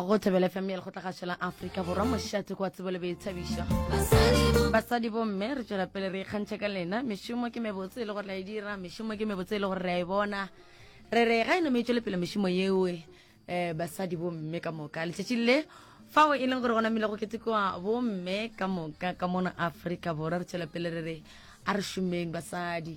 go thebela fm ya lekgotlagašo la aforika borwa mošate kwa tsebo le boithabišo basadi bomme re tswela pele re ikgantšha ka lena mešomo ke mebotse e le gore la e dira mešomo ke mebotse e le gore re a e bona re re ga e nome e tswele pele mešomo yeoe um eh, basadi bomme ka moka letšatši le fao e leng gore gona mile go ketekiwa bomme ka moka ka mona aforika borwa re tswela pele re re a re šomeng basadi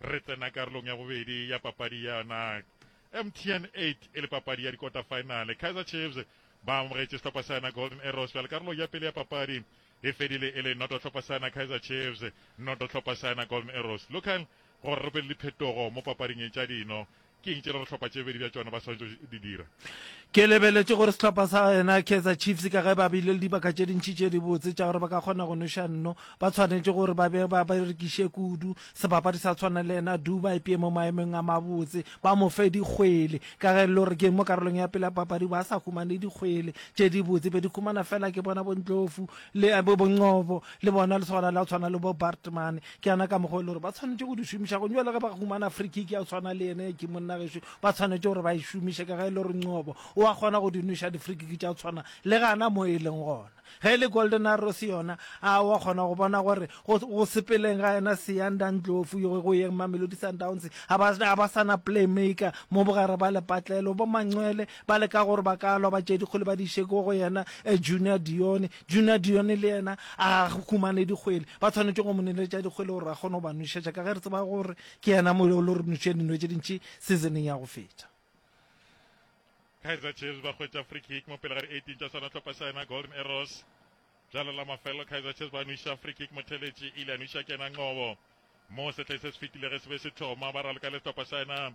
Re tsena karolong ya bobedi ya papadi ya NAC. MTN 8 e le papadi ya dikota finale. Kaizer Chiefs ba amogetše sehlopha sa yona Golden Arrows bjale karolong ya pele ya papadi e fedile e le noto hlopha sa yona Kaizer Chiefs noto hlopha sa yona Golden Arrows. Local gore re be le diphetogo mo papading e tša dino Ke eng tše re re hlopha tše bedi bja tšona ba swanetše go di dira? Ke lebeletše gore sehlopha sa yena Kaizer Chiefs ka ge ba bile le dibaka tše dintši tše dibotse tša gore ba ka kgona go noša nno, ba tshwanetše gore ba be ba berekiše kudu sebapadi sa tshwana le yena Du ba ipee mo maemong a mabotse, ba mo fe dikgwele ka ge e le gore ke mo karolong ya pele ya papadi ba sa humane dikgwele tše dibotse be di humana fela ke bona bo Ndlovu le bo Ngcobo le bona lesogana la go tshwana le bo Baartman. ke yana ka mokgwa e le gore ba tshwanetse go di šomiša go jale ge ba humana free kick ya tshwana le ene ke monna geso ba tshwanetse gore ba e šomiše ka ge e le gore ncobo o a kgona go di noša di-free kick tša tshwana le gana mo e leng gona ge e le golden arrows yona a wa kgona go bona gore go sepeleng ga yena seyanda ntlofu go yeng mamelodi sundowns a ba sana playmaker mo bogare ba lepatlelo bo manxwele ba leka gore ba ka lwa ba tšedikgole ba di šeko go yena eh, junior dione Junadione le yena a humane dikgwele. Ba tshwanetše go mo neletša dikgwele gore a kgone go ba nwešetša ka ge re tseba gore ke yena mo o lo re nwešitše dino tše dintši seasoneng ya go feta. Kaizer Chiefs ba hwetša free kick mo pele ga di-18 tša Sanatlhopa sa yena Golden Arrows. Bjalo la mafelelo Kaizer Chiefs ba nwiša free kick motheletši ile a nwiša kena Nqobo mo sehleng se se fetile ge se be se thoma ba raloka le sehlopha sa yena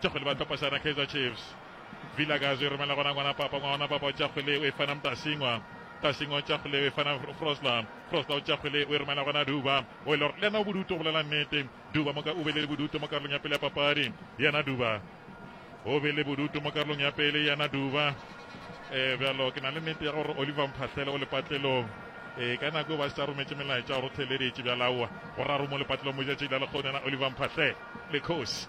Tšakgwele ba thapasana Kaizer Chiefs. Vilakazi o e romela gona ngwana papa ngwana papa o Tšakgwele o e fana Mtasingwa Mtasingwa o Tšakgwele o e fana Frosla Frosla o Tšakgwele o e romela gona Duba o e lor le yena o bodutu go lela nnete Duba mo ka o be le bodutu mo karolong ya pele ya papadi yena Duba o be le bodutu mo karolong ya pele yena Duba eh bjalo ke na le nnete ya gore Oliver Mphahlele o lepatlelong e ka nako ba sa rometše melaetša gore theleditše bja laowa go raro mo lepatlelong mo jatšile le kgone na Oliver Mphahlele le khosi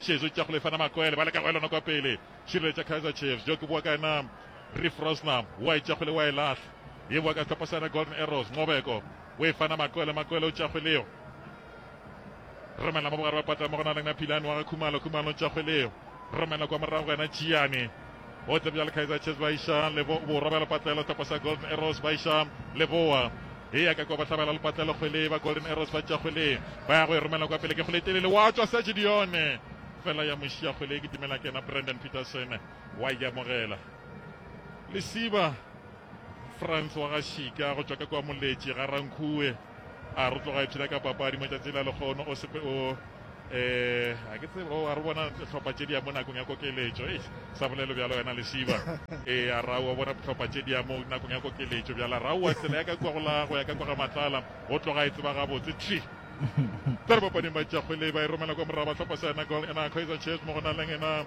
Šetšo tša go lefana makwele ba leka go elana kwa pele. Šireletša Kaizer Chiefs, bjo ke boa ka yena Reef Rosner, wa e tša kgwele wa e lahla. E boa ka sehlopha sa yena Golden Arrows, Nqobeko o e fana makwele, makwele o tša kgweleo romela mo bogare ba pata mo go na leng Naphilane wa ga Khumalo, Khumalo o tša kgweleo romela kwa morago go yena Tšiyane. Gotle bjale Kaizer Chiefs ba iša lebo borwa bja lepatlelo topo sa Golden Arrows ba iša leboa e ya ka kwa ba hlabela lepatlelo kgwele ba Golden Arrows ba tša kgwele ba ya go e romela kwa pele ke kgwele telele wa tswa Serge Dione fela ya mošia kgwele e kitimela ke yena Brandon Peterson wa ikamogela lesiba France wa ga Shika go tšwa ka kwa moletši ga Rankhue a re tloga ipshina ka papadi matšatši la lekgono o sepe o eh a ke tsebe o a re bona tlhopha tše dia mo nakong ya kokeletšo e sa bolelo bjalo wena lesiba e a ra o bona tlhopha tše dia mo nakong ya kokeletšo bjala ra o tsela ya ka kwa go la go ya ka kwa ga matlala go tloga e tseba gabotse tli tsa re bapading ba tšakgwele ba e romela kwa morago ba tlhopha sena gol ena kaizer chiefs mo go na leng ena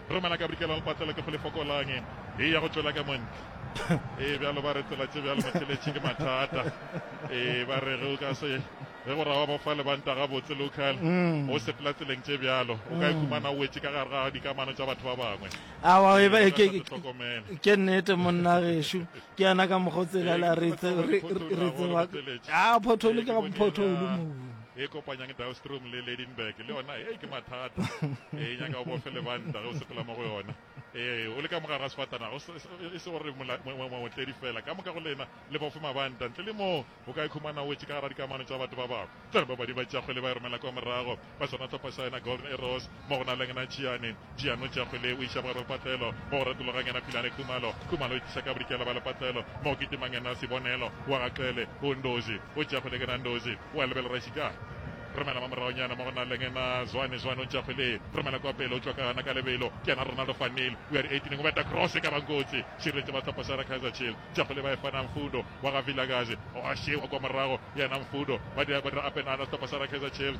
Romela ka bikela le patlelo ke go le fokolang e ya go tšwela ka montle. Ee, bjalo ba re tsela tše bjalo motheletši ke mathata. Ee, ba re ge o ka se ge go rawa ba fa lebanta gabotse local mm. o sepela tseleng tše bjalo o ka ikhumana mm. o wetše ka gare ga dikamano tša batho ba bangwe awa e ee, e ke nnete monna gešo ke yana ka mokgwa o tselela re tseba a pothole ka pothole mo e kopanyang Dahlstrom le Lydenburg le yona e ke mathata e nyaka o bofe lebanta ge o sepela mo go yona e o le ka mogare ga sefatanaga e se gore motledi fela ka moka go lena le bofe mabanta ntle le moo o ka ikhumana wetse ka gara dikamano tsa batho ba bangwe ba badi ba tšakgwele ba e romela kwa morago ba swana tlhopha sa yona golden arrows Mo go na leng na Tšhiane, Tšhiane o tšea kgwele o iša bogare bja lepatlelo. Mo go retologang yena Philane Khumalo, Khumalo o e tliša ka bodikela bja lepatlelo. Mo go kitimang yena Sibonelo wa ga Qele, o Ndozi o tšea kgwele ke na Ndozi o a lebela Rashi ka Romela mo moragonyana mo go na leng na Zwane, Zwane o tšea kgwele Romela kwa pele o tšwa ka gana ka lebelo ke yena Ronaldo van Neel o ya dieitineng o beta cross e ka bang kotsi šireletše ba sehlopha sa yena Kaizer Chiefs tša kgwele ba e fa na Mfundo wa ga Vilakazi o a šewa kwa morago yena Mfudo ba dira apenana sehlopha sa yena Kaizer Chiefs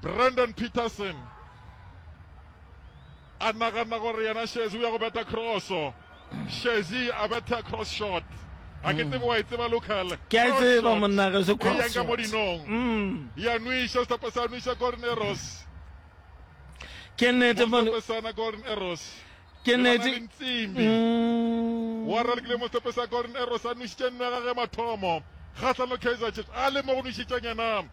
Brandon Peterson a nagana gore yena Shezi o ya go beta crosso Shezi a betha cross shot a ke tsebe wa e tseba local ke a e tseba monna ge se e cross yanga mo dinong mm. ya nwisha sehlopha sa nwisha golden arrows ke nnete mona golden arrows Ke nnete. Mm. Wa ralekile mo sepesa Golden Arrows a nušitše nno ya gage mathomo kgahlano Kaizer Chiefs a le mo go nušitšeng yena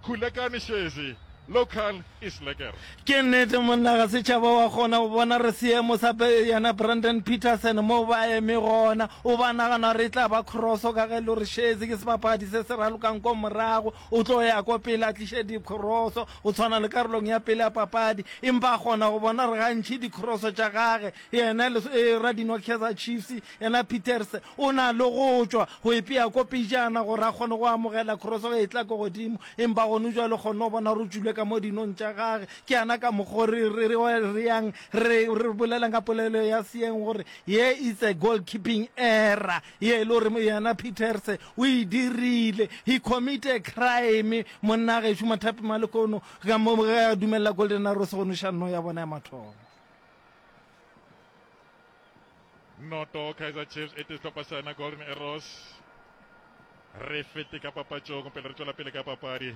Khulekani Shezi local is lekker. Ke nnete monna ga setšhaba wa kgona go bona re seemo sa yena Brandon Peterson mo ba eme gona o ba nagana re tla ba crosso ka ge lo re Shezi ke sebapadi se se ralokang ko morago o tlo ya ko pele a tliše dikgoroso O tshwana le karolong ya pele ya papadi, empa a kgona go bona gore gantši dikroso tša gage yena le radinwa Kaizer Chiefs, yena Pieterse o na le go tšwa go ipea ko pejana gore a kgone go amogela kroso ge e tla ko godimo. Empa gone bjale o kgonne go bona gore o tšwile ka mo dinong tša gage. Ke yana ka mokgwa o re reyang, re bolelang ka polelo ya seeng gore ye it's a goalkeeping error. ye e le gore yena peterse o e dirile he commit a crime monna gešo mathapi malekono ka mo ge a dumelela golden arose go noša nno ya bona ya mathomo noto kaizer chiefs e tehlopha sa yona golden arose re fete ka papatšong pele re tšwela pele ka papadi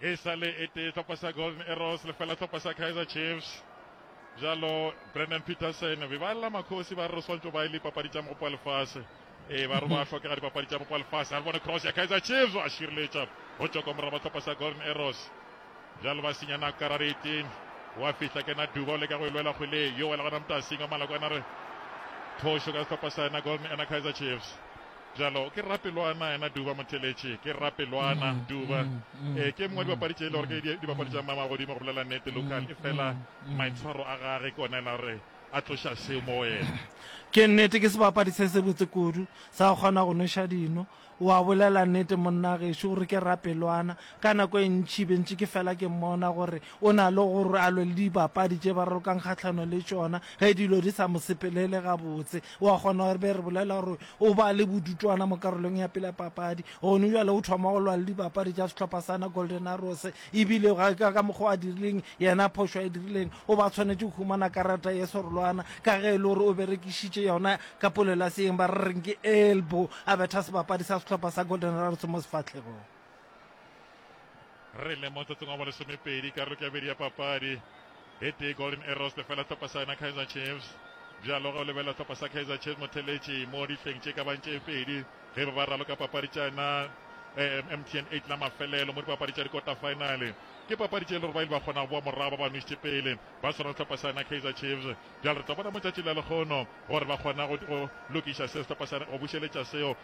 e sa le e tee tlhopa sa golden arrows lefela tlhopa sa kaizer chiefs jalo brandon peterson be ba lela makgosi ba re re swantse ba e le dipapadi tša mogopo wa lefase ee ba re ba tlhokega dipapadi tša mogopo wa lefase a re bone cross ya kaizer chiefs a šireletša go tšwa kwa moraba tlhopa sa golden arrows jalo ba senya nako karare eteng wa fihla kena duba o leka go e lwela kgweleng yo wa legona motasing wa malakwana re thošo ka setlhopa sa ena golden ena kaizer chiefs Bjalo ke rapelwana yena Duba Motheletši, ke rapelwana Duba. Ee, ke e mongwe wa dibapadi tše e le gore ke dibapadi tša mama godimo go bolela nnete Lucan, efela maitshwaro a gage ke ona e la gore a tloša seo mo go yena. Ke nnete ke sebapadi se sebotse kudu, sa go kgona go nweša dino. O a bolela nnete monna gešo, o re ke rapelwana. Ka nako e ntši be ntše ke fela ke mmona gore o na le gore a lwe le dibapadi tše ba rorokang kgahlano le tšona ge dilo di sa mo sepelele gabotse. O a kgona gore be re bolela gore o ba le bodutwana mo karolong ya pele ya papadi, gone bjale o thoma go lwa le dibapadi tša sehlopha sa na Golden Arrows e bile ga ka ka mokgwa a dirileng yena phošo a e dirileng o ba tshwanetše go humana karata ye serolwana ka ge e le gore o berekišitše yona ka polelaseeng ba re reng ke elbow a betha sebapadi sa sehlopha sa Golden Arrows mo sefahlegong. re le motsotsong wa bolesomepedi karolo ke abedi ya papadi e tee golden arrows lefela tlhopa sa yona kaizer chiefs bjalo ge o lebelela tlhopa sa kaizer chiefs motheletši mo dihleng tše ka bang tše pedi ge ba ba ralo ka papadi tša yona eh, mtn eight la mafelelo mo dipapadi tša dikota finale ke papadi tše e le gore ba ile ba kgona go boa morago ba ba nwešitše pele ba swana le tlhopa sa yona kaizer chiefs bjalo re tla bona mo tšatši la lekgono gore ba kgona go lokiša seo tlhopa sa go bušeletša seo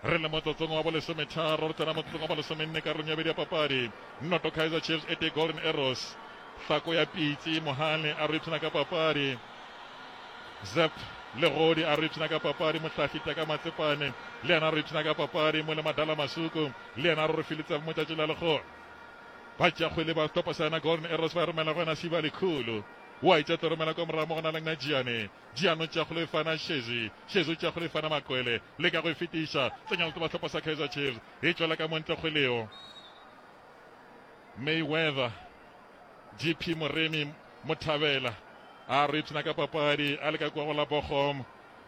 Re le motsotsong wa bolesometharo, re tsena motsotsong wa bolesomenne karolong ya bobedi ya papadi. Noto Kaizer Chiefs e tee Golden Arrows. Hlako ya Pitsi, Mohale a re o ipshina ka papadi. Zep Legodi a re o ipshina ka papadi. Mohlahli Teka Matsepane le yena a re o ipshina ka papadi. Mo le Madala Masuku le yena a re o re filitse mo tšatši la lekgowa. Ba tšea kgwele ba topa sa yena Golden Arrows ba e romela go yena Siba Likhulu. O a itša tlo romela kwa morago mo go na leng Najiane. Diano tša go lefana šezi, šezo tša go lefana makwele, le ka go e fetiša, tsenya le toba hlopha sa Kaizer Chiefs e tšwela ka montle go Leo Mayweather. GP Moremi Mothabela a re ipshina ka papadi a leka kua go la Bochum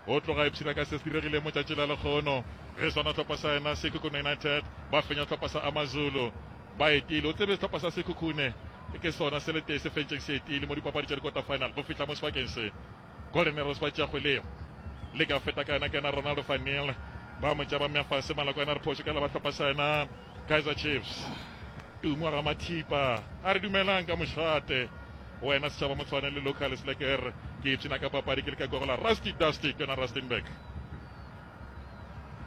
o tloga ipshina ka se se diregileng motšatši la lekgono ge sona hlopha sa yena se Kukuna United ba fenya hlopha sa Amazulu ba etile. O tsebe sehlopha sa Sekhukhune ke sona se le tee se fentšeng se etile mo dipapadi tša di-quarter final go fihla mo sebakeng se Golden Arrows ba tšea kgwelego. Le ka feta ka yena ke yena Ronaldo van Niel, ba mo tšea ba mmea fase, Maloko yena a re phošo ke la ba hlopha sa yena Kaizer Chiefs. Tumo wa Ramathipa a re dumelang ka mošate wena setšhaba Motshwane le Locals le ke re ke ipshina ka papadi ke le ka kwa go la Rusty Dusty ke yona Rustenburg.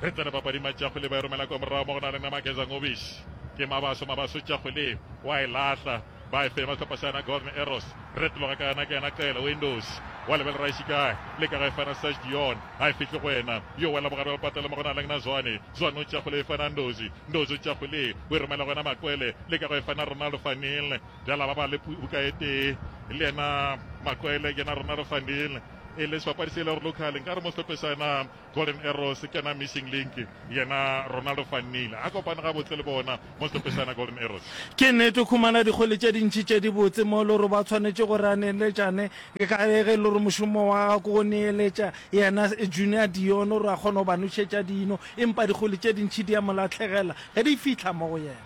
Re tsene papading Matšakgole ba e romela kwa morago mo go na le Namageza Ngobish. Ke Mabaso, Mabaso Tšakgole wa e lahla ba e fema sehlopha sa yena Golden Arrows. Retologa ka yena ke yena Cele Windows wa lebelela e šikae le ka ga e fana Serge Dion a e fihle go wena yo wela bogare ba lepatela mo go na le na Zwane. Zwane o Tšakgole e fana Ndozi, Ndozi o Tšakgole o e romela go yena Makwele le ka go e fana Ronaldo van Neel. Bjala ba ba le buka e tee le yena Makwele ke yena Ronaldo van Neel. e le sebapadi se e le gore local nka re mo sepe sa yena golden arrows ke yona missing link yena ronaldo fannile a kopane ga botse le bona mo sepe sa yena golden arrows ke nnete o khumana dikgole tše dintšhi tše di botse mo e le gore ba tshwanetše gore a neeletšane ka ge e le gore mošomo wa ga ko go neeletša yena junior dion gore a kgone go ba nošetša dino empa dikgole tše dintšhi di ya molatlhegela ge di fihla mo go yena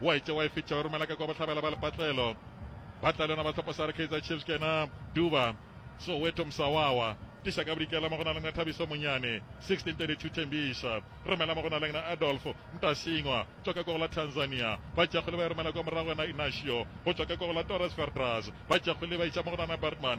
wa e tšewa e fetša o romela ka kwa bohlabela ba lepatlelo ba tla le yona ba tlhopa sa re kaizer chiefs ke yena duba soweto msawawa tisa ka bodikela mo go na leng na thabiso monyane 1632 thembiša romela mo go na leng na adolfo ntasingwa tšwa ka kwa go la tanzania ba tšakgole ba e romela kwa morago yona inasio go tšwa ka kwa go la torres verdras ba tšakgole ba itša mo go nana bartman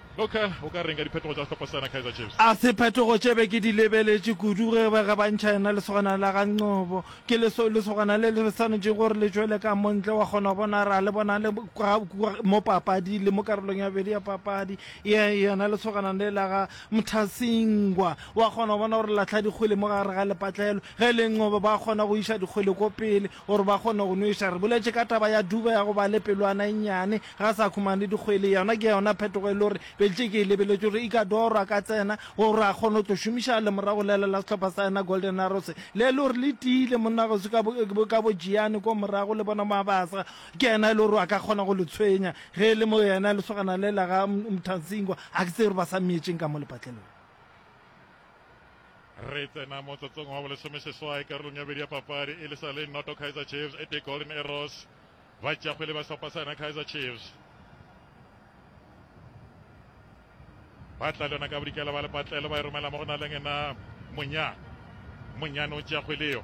A se phetogo tše be ke di lebeletše kudu ge ba ge ba ntšha yena lesogana la ga Nqobo. Ke leso, lesogana le le swanetšego gore le tšwele ka mo ntle, wa kgona go bona ra le bona le kwa, kwa mo papadi le mo karolong ya bobedi ya papadi ya yona lesogana le la ga Mthasingwa. Wa kgona go bona gore la hlwa dikgwele mo gare ga lepatlelo. Ge e le Nqobo ba kgona go iša dikgwele ko pele, gore ba kgone go nweša. Re boletše ka taba ya Duba ya go ba le pelwana e nnyane, ga a sa khumana le dikgwele. Yona ke yona phetogo e le gore Beltšeke e lebeletše gore Ikadoro a ka tsena gore a kgone go tlo šomiša lemorago lele la sehlopha sa yena Golden Arrows, le e le gore le tiile monna gauswi ka bo ka bo Giyani ko morago le bona Mabasa. Ke yena e le gore a ka kgona go le tshwenya ge e le mo yena lesogana le la ga Mthantsingwa. Ga ke tsebe gore ba sa mmeetšeng ka mo lepatlelong. re tsena motsotsong wa bolesome seswai karolong ya bedi ya papadi e le sa le noto kaizer chiefs e te golden arrows ba tšakgwele ba sehlopha sa yona kaizer chiefs ba tla le yona ka bodikela ba lepatlelo ba e romela mo go na leng ena monyane monyane o tšakgweleo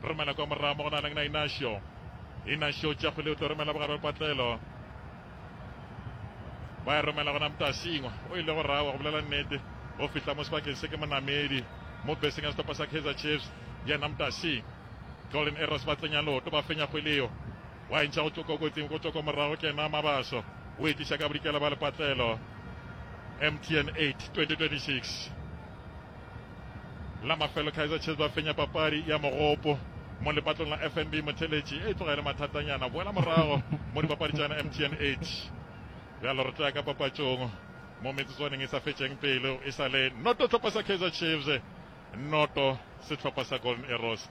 romela kwa morago mo go na leng na inasio inasio tšakgweleo tlo romela bogare lepatlelo ba e romela gona mtasingwa o ile go rawa go bolela nnete go fihla mo sebakeng se ke monamedi mo beseng ya setopa sa kaizer chiefs yena mtasing golden arrows ba tsenya loto ba fenya kgweleo wa entšha go tloka kotsing go tloka morago kena mabaso o etiša ka bodikela ba lepatlelo mtn 8 2026 La mafelo Kaizer Chiefs ba fenya papadi ya mogopo mo lepatong la FNB Motheletši e tloga e le mathatanyana. Boela morago mo dipapadi tša yona MTN 8 bjalo re tloya ka papatšong mo metsotswaneng e sa fetšeng pelo e sa le noto tlhopha sa Kaizer Chiefs noto sehlopha sa Golden Arrows.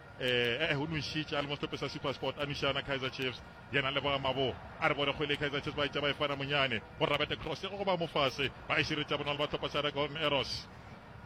Ee, o nwešitše a le mo sehlopheng sa SuperSport, a nweša na Kaizer Chiefs. Yena a leboga Mabo, a re bore kgwele Kaizer Chiefs ba etša ba e fana monyane, go Rabete cross ya go goba mofase, ba e šireletša bonolo ba hlopha sa Golden Arrows.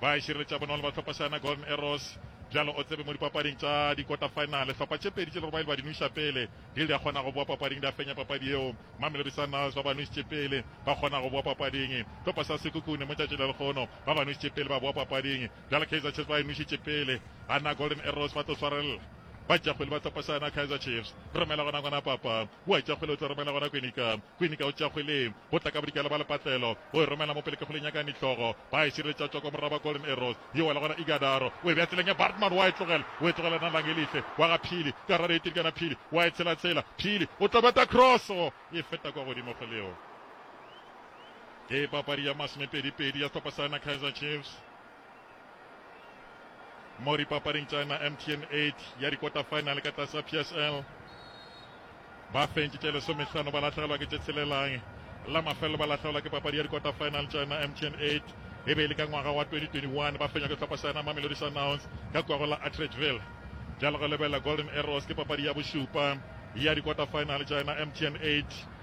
Ba e šireletša bonolo ba hlopha sa Golden Arrows. Bjalo o tsebe mo dipapading tša dikota-finale, hlopha tše pedi tše le gore ba ile ba di nweša pele, di ile di a kgona go bowa papading, di a fenya papadi yeo. Mamelodi Sundowns ba ba nwešitše pele, ba kgona go bowa papading. Hlopha sa Sekhukhune mo tšatši la lekgono, ba ba nwešitše pele, ba bowa papading. Bjale Kaizer Chiefs ba e nwešitše pele. Ana Golden Arrows ba tlo swarella. Ba tša kgwele ba tlo pasana Kaizer Chiefs. Romela gona gona papa. Wa tša kgwele o tlo romela gona Kwinika. Kwinika o tša kgwele. Go tla ka bodikela ba lepatlelo. O e romela mo pele ke kgwele nyaka nihlogo. Ba e šireletša tšwa kwa moraba wa Golden Arrows. Yo wela gona Igadaro. O e bea tseleng ya Bartman wa e tlogela. O e tlogela na Langelihle. Wa ga Phili. Karare e tirikana Phili. Wa e tshela tshela. Phili o tlo beta crosso. E feta kwa godimo kgweleo. Ke papadi ya masomepedi pedi ya sehlopha sa yona Kaizer Chiefs. mo dipapading tša na mtn 8 ya dikota-final ka tlase psl ba fentšitše lesomehlano ba lahlegelwa ke tše tshelelang la mafelelo ba lahlegelwa ke papadi ya dikota-final tša na mtn 8 e be e le ka ngwaga wa 2021 ba fenywa ke tlhopha sa yona mamelodi sundowns ka kwago la atredgeville bjalo go lebelela golden arrows ke papadi ya bošupa ya dikota-final tša yona mtn 8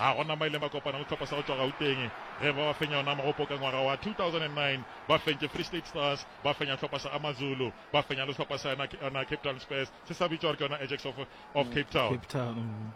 A gona mo a ileng ba kopana le tlhopha sa go tšwa Gauteng ge ba ba fenya yona mogopo ka ngwaga wa 2009. Ba fentše Free State Stars, ba fenya tlhopha sa AmaZulu, ba fenya le tlhopha sa yona Cape Town Spurs se sa bitšwa gore ke yona Ajax of, of Cape Town. Cape Town.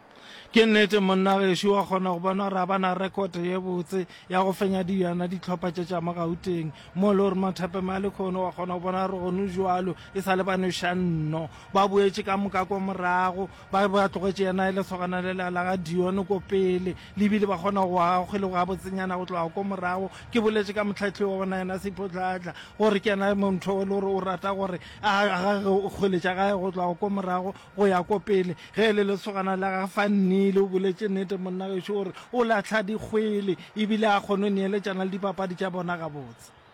Ke nnete monna gešo wa kgona go bona gore a bana rekote ye botse ya go fenya di yana ditlhopha tše tša mo Gauteng mo le gore Mathepe Malikhono wa kgona go bona gore gone joalo e sa le banošanno ba boetše ka moka kwa morago Ba be ba tlogetše yena e lesogana le la ga Dione ko pele, le bile ba kgona go aga kgwele go gabotsenyana go tloga ko morago. Ke boletše ka mohlahli wa bona yena Seiphotlhaahla, gore ke yena montho e le gore o rata gore a agage kgwele tša gae go tloga ko morago go ya ko pele. Ge e le lesogana la ga Fannile, o boletše nnete monna gešo, o re o lahla dikgwele e bile a kgone go neeletšana le dipapadi tša bona gabotse.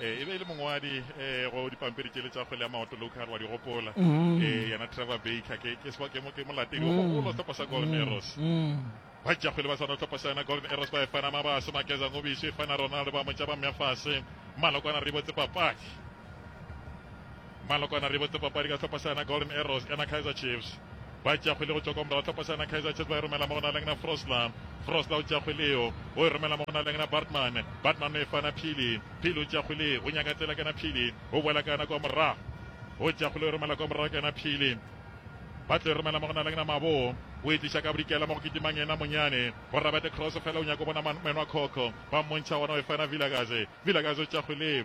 e be e le mongwadi um go dipampiri tšele tša kgwele ya maoto local wa di gopola um yena trevor baker ke molatedi o mogolo tlhopha sa golden arrows ba tša kgwele ba swana tlhopha sa yona golden arrows ba e fana mabaso makeza ngobiso e fana ronaldo ba motša ba mmya fase malokwana re botse papadi Malokwane a re e botse papadi ka hlopha sa yona Golden Arrows ena Kaizer Chiefs ba tšea kgwele go tšwa kwa morago hlopha sa yona Kaizer Chiefs ba e romela mo go na leng na Frosler Frosler o tšea kgwele eo o e romela mo go na leng na Bartman Bartman o e fana Phili Phili o tšea kgwele o nyaka tsela ka yena Phili o boela ka yona kwa morago o tšea kgwele o e romela kwa morago ka yena Phili ba tlo e romela mo go na leng na Mabo o e tliša ka bodikela mo go kitimang yena Monyane go Rabete cross fela o nyaka bona Menwa Khokho ba mmontšha ona o e fana Vilakazi Vilakazi o tšea kgwele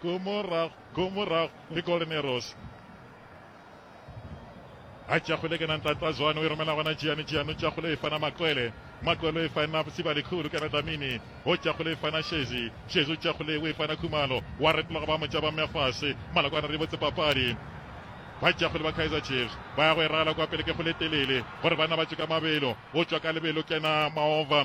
Go morago, go morago, le Golden Arrows. A tšakgole kana ntlatla zwane o e romela gona Jiane, Jiane o tšakgole o e fana Makwele, Makwele o e fana Sibalikhulu kana Dlamini, o tšakgole e fana Shezi, Shezi o tšakgole o e fana Khumalo, wa retlola go ba motša ba mmea fase, Malokwane re botse papadi. Ba tšakgole ba Kaizer Chiefs ba ya go e rala kwa pele ke go le telele gore banna ba tšwe ka mabelo, o tšwa ka lebelo kena Maova,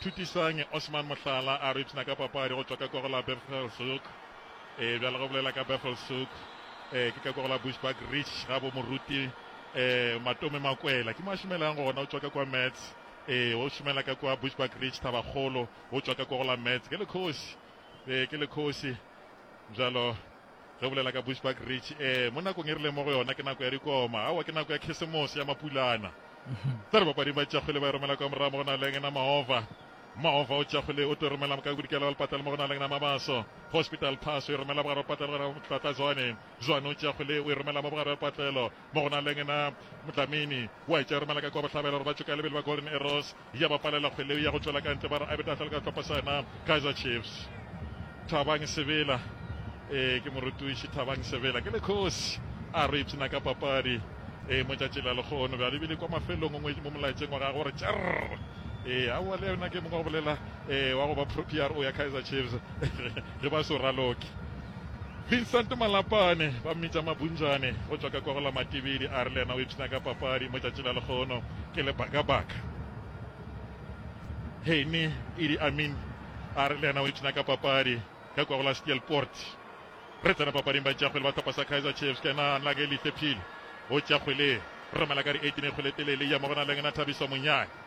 Thutisange Osman Mohlala a re ipshina ka papadi go tšwa ka koro la Bevelshoek e bjale go bolela ka Bevelshoek e ke ka koro la Bushbuck Ridge ga bo moruti e Matome Makwela ke mo a šomelang gona o tšwa ka kwa Mets e o šomela ka kwa Bushbuck Ridge Thabakgolo o tšwa ka koro la Mets ke lekhosi e ke lekhosi bjalo Re bolela ka Bushbuck Ridge e, mo nakong e re leng mo go yona ke nako ya dikoma, aowa ke nako ya Khrisemose ya Mapulana. Tsere bapading ba Tšakgwele ba e romela kwa morago mo go na leng ena Maova. Maova o Tšakgwele o tlo e romela ka bodikela wa Lepatlelo mo go na leng ena Mabaso. Hospital Pass o e romela bogare wa Lepatlelo gona Motlatla Zwane. Zwane o Tšakgwele o e romela mo bogare wa Lepatlelo mo go na leng ena Motlamini. Wa e tša e romela ka kwa Bohlabela gore ba tšoka lebele ba Golden Arrows. ya ba palela kgweleo ya go tšwela ka ntle ba re Abed a tla le ka sehlopha sa yena Kaizer Chiefs. Thabang Sebela, Ee, ke morutiši Thabang Sebela, ke le kgosi, a re o ipshina ka papadi. Ee, mo tšatši la lekgono bjale ebile kwa mafelong ngwe mo molaetseng wa gagwe o re tšerr. Ee, aowa le yena ke mongwe wa go bolela, ee, wa go ba pro-, PRO ya Kaizer Chiefs. le ba Soraloki. Vincent Malapane, ba mmitša Mabunjane go tšwa ka kwa go la Matibidi, a re le yena o ipshina ka papadi mo tšatši la lekgono ke le Baka-Baka. Henny Idi Amin, a re le yena o ipshina ka papadi ka kwa go la Steelpoort. Re tsena papading batšeakgwele ba tlhopha sa Kaizer Chiefs, ke yena Nagelihle Phili o tšea kgwele e romela ka di 18 e kgwele e telele e ya mo go Nalengena Thabiso Monyane.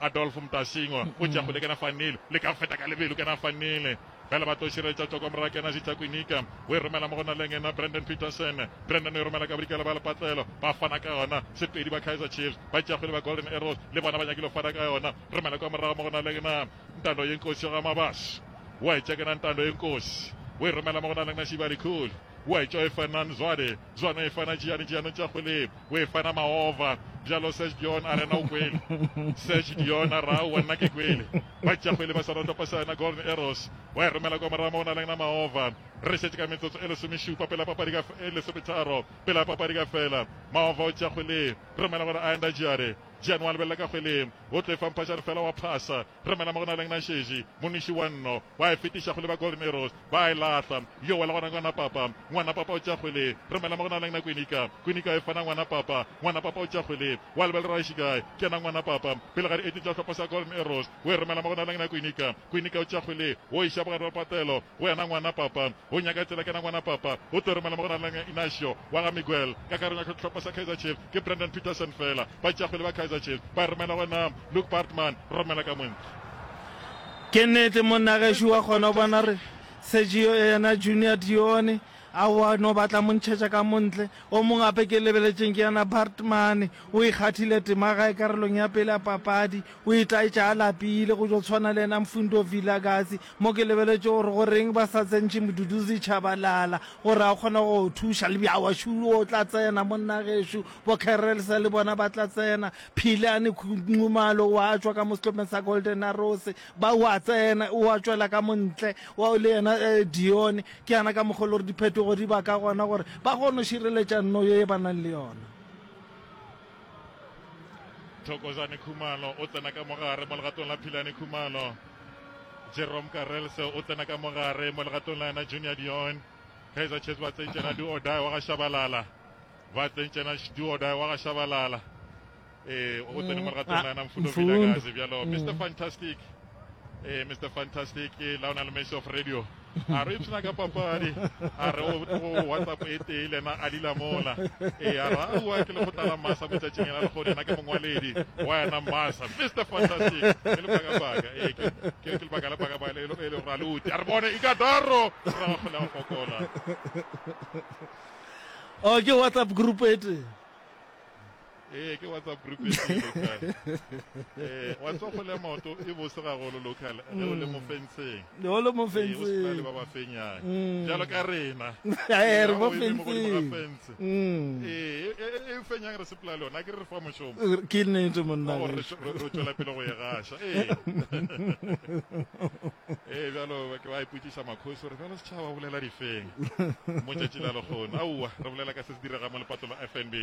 Adolf Mtasingwa o tšea kgole kena fanile, le ka go feta ka lebelo kena fanile. Fela ba tlo širetša tšoko morago kena Zitsa Kwinika. O e romela mo go Naleng yena Brandon Petersen. Brandon o e romela ka bodikela ba lepatlelo. Ba fana ka yona. Sepedi ba Kaizer Chiefs. Ba tšea kgole ba Golden Arrows. Le bona ba nyakile go fana ka yona. Romela kwa morago mo go Naleng yena Ntando Yenkosi wa Gamabashe. O a e tšea kena Ntando Yenkosi. O e romela mo go Naleng yena Shibali Khuli. O a e tšea o e fa Nan Zwane. Zwana e fana tšeane tšeanong tša kgole o e fana maova bjalo Serge Dion a rena o kwele Serge Dion a ra wa nna ke kwele ba tša kgwele ba swana topa sana Golden Arrows wa e romela kwa moramo o na leng na maova re šetše ka metsotso e lesomešupa pela papadi ka e lesometharo pela papadi ka fela maova o tša kgwele romela gore a enda Jare Jane wa lebelela ka kgweleng o tlo e famphašane fela wa phasa Re mela mo go na leng našeši, moniši wa nno, wa e fetiša kgole ba Golden Arrows ba e lahla. Yowa le gona Ngwana Papa, Ngwana Papa o tša kgole, re mela mo go na leng na Kwinika, Kwinika e fana Ngwana Papa, Ngwana Papa o tša kgole, wa lebel Raeshikai, ke yena Ngwana Papa, pele ga di eti tša hlopha sa Golden Arrows, o e romela mo go na leng na Kwinika, Kwinika o tša kgole, o iša bogare ba patelo go yena Ngwana Papa, o nyaka tsela ke yena Ngwana Papa, o tlo romela mo go na leng na Inacio wa ga Miguel, ka kareng ya hlopha sa Kaizer Chiefs ke Brandon Petersen fela, ba tša kgole ba Kaizer Chiefs ba e romela go yena Luke Bartman, Romela ka Moentlha. Ke nnete monna gešo wa kgona go bona gore Sergio yena Junior Dione a wa no batla mo ntšhetša ka montle. O mongwe gape ke lebeletšeng ke yana Bartman, o ikgathile tema gae karolong ya pele ya papadi, o itaetša a lapile go tšo tshwana le yena Mfundo Vilakazi. Mo ke lebeletše gore go reng ba sa tsentšhe Mduduzi Tshabalala gore a kgone go thuša. Lebjawa Shulu o tla tsena monna gešo, bo Kerrelsa le bona ba tla tsena. Philane Nxumalo o a tšwa ka mo sehlopeng sa Golden Arrows ba o a tsena o a tšwela ka montle wa le yena eh, Dione ke yana ka mokgwa le gore diphetogo di ba ka gona gore ba kgone go šireletša nno ye ba nang le yona thokozane khumalo o tsena ka mogare mo legatong la philane khumalo jerome karelse o tsena ka mogare mo legatong la yena junior dion kaizer chiefs ba tseitsena di odae wa ga shabalala ba tsentšena Shduoda wa ga Shabalala eh o tsene mo legatong la ena mfundo Vilakazi bjalo Mr Fantastic eh Mr Fantastic ke la ona le Mace of Radio a re ipsena ka papadi a re o WhatsApp e tee le ena a lila mola eh a ra ua ke lekgotla la masa mo tšatšing ena le go ena ke mongwaledi wa ena masa Mr Fantastic ke le baka baka eh ke ke le baka la baka baka le le ra luti a re bone ikadaro ra go la fokola Oh, ke WhatsApp group e tee. ee ke whatsapp group e tee local ee wa tswa go le maoto e bose ga golo local ge o le mo fenseng Le o le mo ee o sena le fenseng. ba ba fenyang Mm. jalo ka rena Ee, re mo Ga o eme mo godimo ga fenseng. fence. Mm. ee e- e- e fenyang re sepela le yona a ke re re fa mošomo Ke nnete monna. Wa gore re tšwe- re re tšwela pele go e gaša ee ee bjalo ke ba ipotšiša makgosi gore bjalo Tla wa bolela difeng mo tšatši la lekgono? Aowa, re bolela ka se se direga mo lepato la FNB.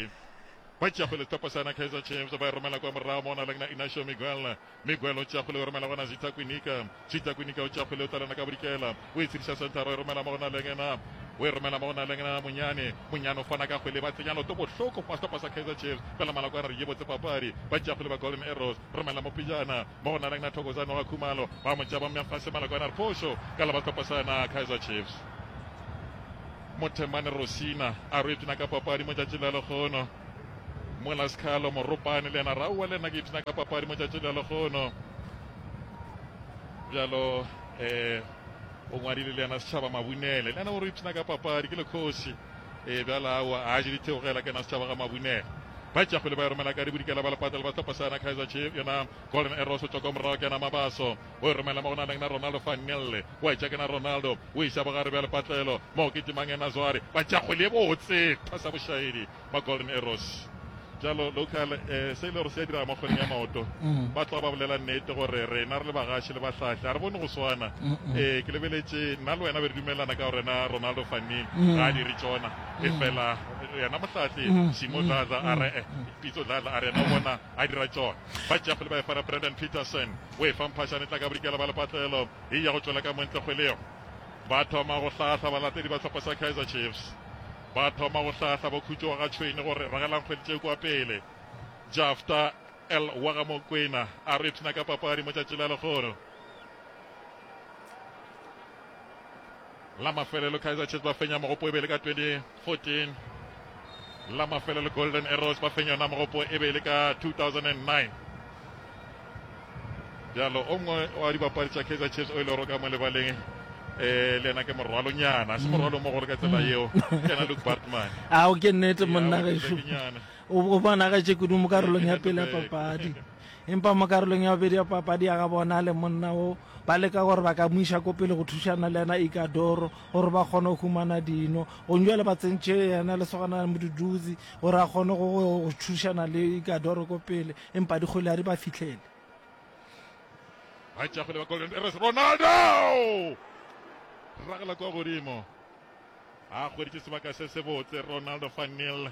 Ba tšea kgwele setopo sa na Kaizer Chiefs ba e romela kwa morago mo na leng na Inacio Miguel. Miguel o tšea kgwele o romela gona Zita Kwinika. Zita Kwinika o tšea kgwele o tlalana ka bodikela o e tshediša centre o e romela mo go na leng na o e romela mo go na leng na Monyane. Monyane o fana ka kgwele ba tsenya loto bohloko fa setopo sa Kaizer Chiefs pela malakwana re ye botse papadi. Ba tšea kgwele ba Golden Arrows romela mo pejana mo go nalang na Thokozani wa Khumalo ba mo tšaba mya fase malako a na re phošo ka la ba sehlopha sa na Kaizer Chiefs. Mothemane Rosina a re o ipshina ka papadi mo tšatši la lekgono. Mola Skhalo Moropane le yena raua le nna ke ipshina ka papadi mo tšatši la lekgono. Bjalo eh o ngwadile le yena setšhaba mabunele le yena o re ipshina ka papadi ke lekgosi e bjala awa a je ditheogela ke na setšhaba ga mabunele ba tšea kgwele ba e romela ka dibodikela ba lepata le ba sehlopha sa yona Kaizer Chiefs yona Golden Arrows o tšoko morago ke yena Mabaso o e romela mo go na leng na Ronaldo van Gelle o e tšea ke na Ronaldo o e isa bogare bja lepatlelo mo ke timang yena Zware ba tšea kgwele e botse phasa bošaedi ba Golden Arrows jalo local eh, se e le gore se ya diraga mo kgweleng ya maoto mm. ba tloga ba bolela nnete gore rena re le bagaši le bahlahle a re bone go swana ee ke lebeletše nna le wena be re dumelelana ka gorena ronaldo fannin mm. ga a dire tsona efela yena mohlahle simo dladla a re pitso dladla a re yena o bona a dira tsona ba jeff le ba efara brandon peterson o e famphashane tla ka bodikela ba lepatlelo e ya go tswela ka montle kgwelego ba thoma go hlahla balatedi ba tlhopha sa kaizer chiefs ba thoma go hlahla ba khutšo ga tshwene gore ragelang kgwedi tse kwa pele jafta l wa ga mokwena a re ipshina ka papadi mo tšatši la lekgono La mafelelo Kaizer Chiefs ba fenya mogopo e be le ka 2014. La mafelelo Golden Arrows ba fenya yona mogopo e be le ka 2009. Bjalo o mongwe wa dibapadi tša Kaizer Chiefs o ile e roka mo lebaleng eh le yena ke morwalonyana se morwalo mo gore ka tsela mm. yeo ke yena luke bartman a o ke nnete monna gešo o bona ga tše kudu mo karolong ya pele ya papadi empa mo karolong ya bobedi ya papadi ya ga bona le monna o Ba leka gore ba ka mo iša ko pele go thušana le yena Ikadoro gore ba kgone go humana dino. Gong jwale ba tsentše yena lesogana la Moduduzi gore a kgone go go thušana le Ikadoro ko pele, empa dikgwele ga di ba fihlele. Ba tšea kgwele ba Golden Arrows, Ronaldo! Ragela kwa godimo. A hweditše sebaka se sebotse Ronaldo van Nil.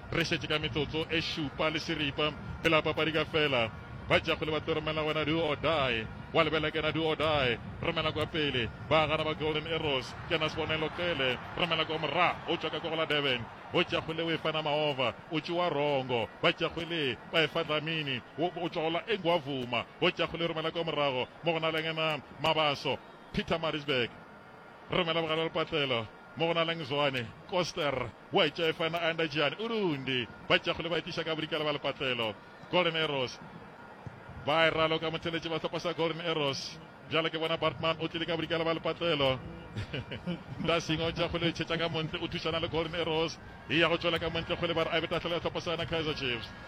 Re šetše ka metsotso e šupa le šeripa pela papadi ka fela. Ba Jakgole ba tlo romela wena do or die. Wa lebela kena do or die. Romela kwa pele. Ba gana ba Golden Arrows. Kena Sbonelo Cele. Romela kwa mora. O tšwa ka kwa go la Durban. Bo Jakgole o e fa Namaova. O tšoa Rongo. Ba Jakgole ba e fa Dlamini. O, o tšwa go la Engwavuma. Bo Jakgole romela kwa morago. Mo go na leng ena Mabaso. Pietermaritzburg. Romela bogare lepatlelo. Mo go na leng Zwane. Koster. Boetšefa na anda Gianni Urundi ba tšeago le ba etiša ka bodikela ba lepatlelo. Golden Arrows ba e raloka motheletši ba hlopha sa Golden Arrows. Bjale ke bona Bartman o tlile ka bodikela ba lepatlelo. Ndasing o tšea go le ntšhetša ka montle, o thušana le Golden Arrows e ya go tšwela ka montle go le ba re a be tahlele ya hlopha sa yona Kaizer Chiefs.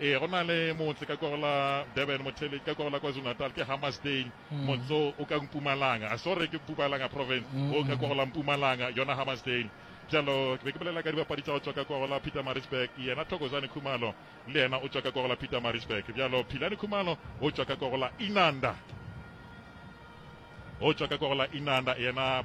Ee, go na le motse ka kwego la Durban, Motheleki ka kwego la KwaZulu-Natal ke Hammarsdale, mm. motse o ka Mpumalanga, a sorry ke Mpumalanga province, mm. o ka kwego la Mpumalanga, yona Hammarsdale jalo ke be ke bolela ka dibapadi tsa go tswa ka kwego la peter marisburg yena thokozane khumalo le yena o tswa ka kwego la peter marisburg jalo philane khumalo o tswa ka kwego la inanda o tswa ka kwego la inanda yena